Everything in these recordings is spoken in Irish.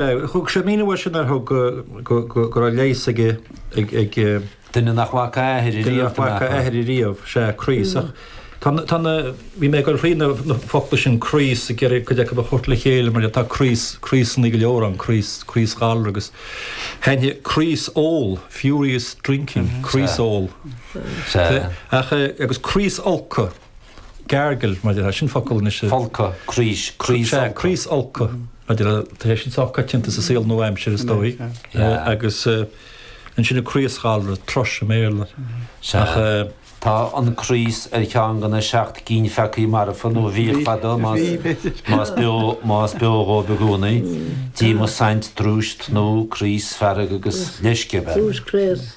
Thug sé míniú ar sin ar thug go raibh leigheas ag. duine nach bhfaca a athair riamh. Duine nach bhfaca a athair riamh, sea, craos. Tá na, bhí mé ag cuardach na focla sin craos ag iarraidh cuid acu a thabhairt le chéile mar tá craos, craosannaí go leor ann, craos, craosghalar agus thaitnigh, craosól, furious drinking, craosól. Sea. Ach, agus craosfholcadh. gargle, mar a déarfá, sin focal anois a. folcadh, craois, craos. Sea, craosfholcadh, mar a déarfá, tá sé sin sách coitianta sa saol nua-aimseartha is dóigh. Agus ansin an craosghalra, thrush i mBéarla. Sea. Tá an craos ar cheann de na seacht gcinn pheacaí marfa, nó bhíodh fadó, más beo dhóibh i gcónaí, díomas, saint, drúis, tnúth, craos, fearg agus leisce a bheith. Drúis, craos.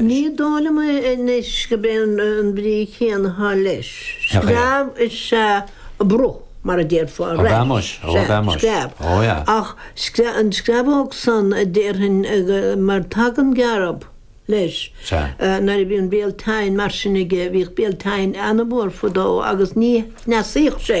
Ní dó' liom é anois gob é an brí chéanna athá leis. Screamh is ea a bruth, mar a déarfá, rash. Sea, screamh. Ach an screamhóg san a déarfainn mar tagann gearb leis. Nuair a bhí an béal tinn mar sin aige, bhíodh béal tinn ana-mhór fadó agus ní chneasaíodh sé.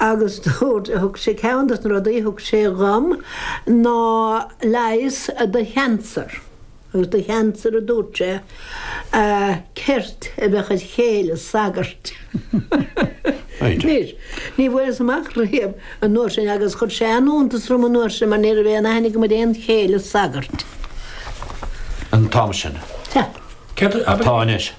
Agus dúirt, thug sé, ceann de na rudaí a thug sé dhom ná leigheas do chancer. Agus do chancer a dúirt sé, ceirt a bheadh ó chéile sagairt. Anois, ní bhfuaireas amach riamh an uair sin agus chuir sé an-iontas orm an uair sin mar ní raibh aon aithne agam ar aon chéile sagairt. an t-am sin. Tá. Céard atá anois?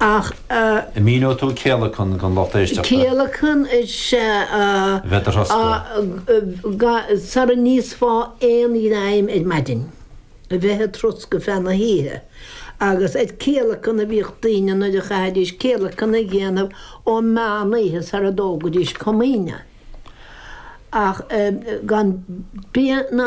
Ach a. An míneoidh tú céalacan don lucht éisteachta? Céalacan is ea a. Bheith id throscadh. Ga, Sara n-íosfá aon ghreim ar maidin, a bheith id throscadh feadh na hoíche. Agus ar céalacan a bhíodh daoine nuair a chaithfidís céalacan a dhéanamh ó meánoíche sara dtógaidís Comaoine. Ach gan bia ná.